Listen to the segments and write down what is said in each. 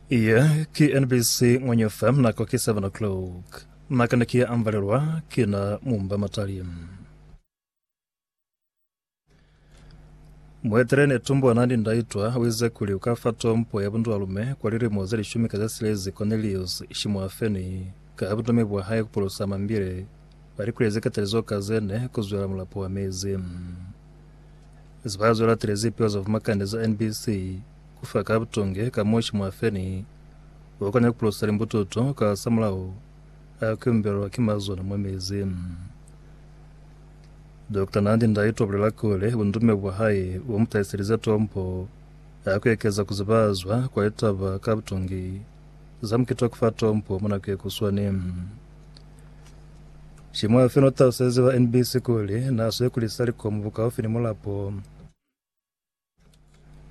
Iye ki NBC Ngwenye FM nako ki 7 o'clock. Naka ne ki ambalelwa kina mumba matali. Muetele ne tumbwa nandi ndaitwa wize kuli ukafa tompo ya bundualume kwa lilimo ze lishumi ka ze silezi Cornelius Shimuafeni ka butumi bwa hae kupulusa mambile balikulezi katalizo ka zene kuzwela mulapo wa mezi. Ziba zo latile zipiwa za Vumakande za NBC ku fa ka butonge ka mushi mwa feni wa ku nyakulusa limbututu kasamulaho a ku yumbelwa ki mazona mwa mezi. Dokta Nandi Ndaitwah ubulela kuli bundume bwa hae bu mu tahiselize tombo ya ku ekeza ku zibazwa kwa litaba ka butonge za mukiti wa ku fa tombo mwa nako ye kuswani. Shimoya fela utalusezi wa NBC kuli naswe kulisa likomu bukaufi ni mulapo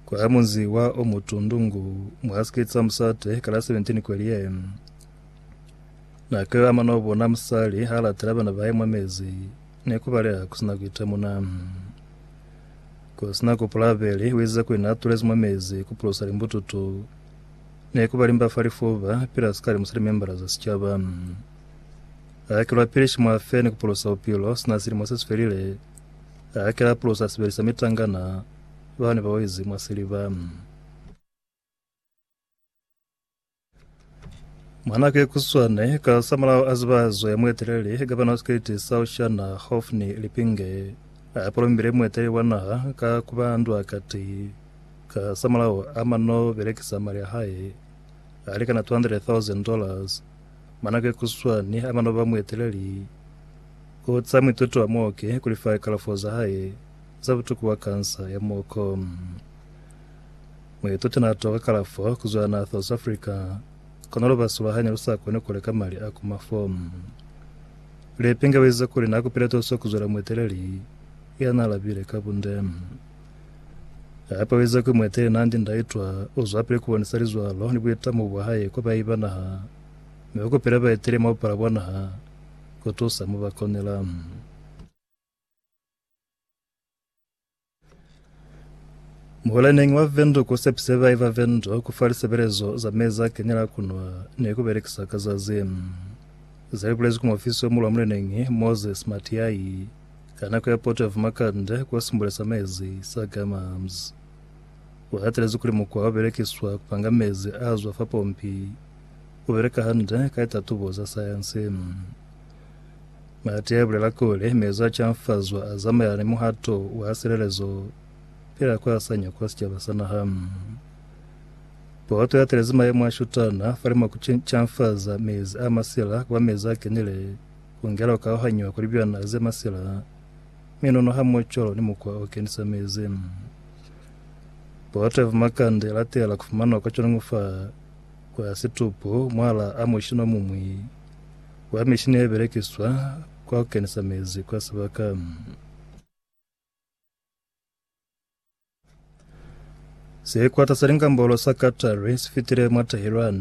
kwa ya munzi wa Omutundungu mwa sikiti sa musate kala 17 kweli ye nake wa mano bona musali ha latela bana ba mwa mezi ne kubaleha kusina kuitemuna kusina kupula abeli wize kwina atulezi mwa mezi kupulusa limbututu Ne ku ba limba fa lifuba, pila sikali mu silimembala za sicaba. A hakelwa pili shimu a fe ni ku pulusa bupilo, sina silimo se si felile, a hakela a pulusa a sebelisa mitangana, ba ne ba wezi mwa siliba. Mwa nako ye kuswane, ka sa mulao a ziba zo ya mueteleli, gavana wa sikriti sa Oceana, Hophni Lipinge, a polombile mueteleli wa naha ka ku ba ndwa kati, Ka za mulao, Aman no belekisa mali a hae a likana 200,000 dollars mwa nako ye kuswani haba no ba mueteleli ku za muituti wa muoki ku lifa likalafo za hae za butuku bwa kansa ya muoko. Muituti n'a toka kalafo ku zwa naha South Africa, kono lubaso lwa hae ne lu sa koni ku leka mali a ku mafo. Lepinge u ize kuli n'a kupile tuso ku zwela mueteleli ya n'a labile ka bunde. Hape uize kuli mueteleli naandi ndaitwa uzwapili kubonisa lizwalo ni buitamo bwahae kwa baahi ba naha, mi ukupile baeteleli mwa bupala bwa naha kutusa mobakonela. Muhulaneñi wa Windhoek usepise baahi ba Windhoek kufa lisebelezo za mezi a kenyela a kunwa ni kubelekisa ka zazi. Zalibulezwi ki muofisi omulu wa muleneñi, Moses Matiahi, Ka nako ya poto ya Vumakande kwa Simbule sa Mezi sa Gamams, ku hatelezi kuli mukwa o belekiswa ku panga mezi a zwa fa pompi u beleka hande ka litatubo za sayansi. Marty a bulela kuli, Mezi a canfazwa a zamaelana ni muhato wa silelezo pila kwa sanya kwa sicaba sa naha. Poto i hatelezi mayemo a shutana fa limo ku canfaza mezi a masila ku ba mezi a kenile Kungela ukauhanyiwa kuli byona ze masila, minunu hamuocolo ni mukwa o kenisa mezi. Bote vumakanda i latela kufumanwa kwa conungu fa kwa situpu mwala a mushini omumwi wa mishini ye belekiswa kwa kukenisa mezi kwa sibaka. Sikwata sa lingambolo sa Qatari sifitile mwa Tehran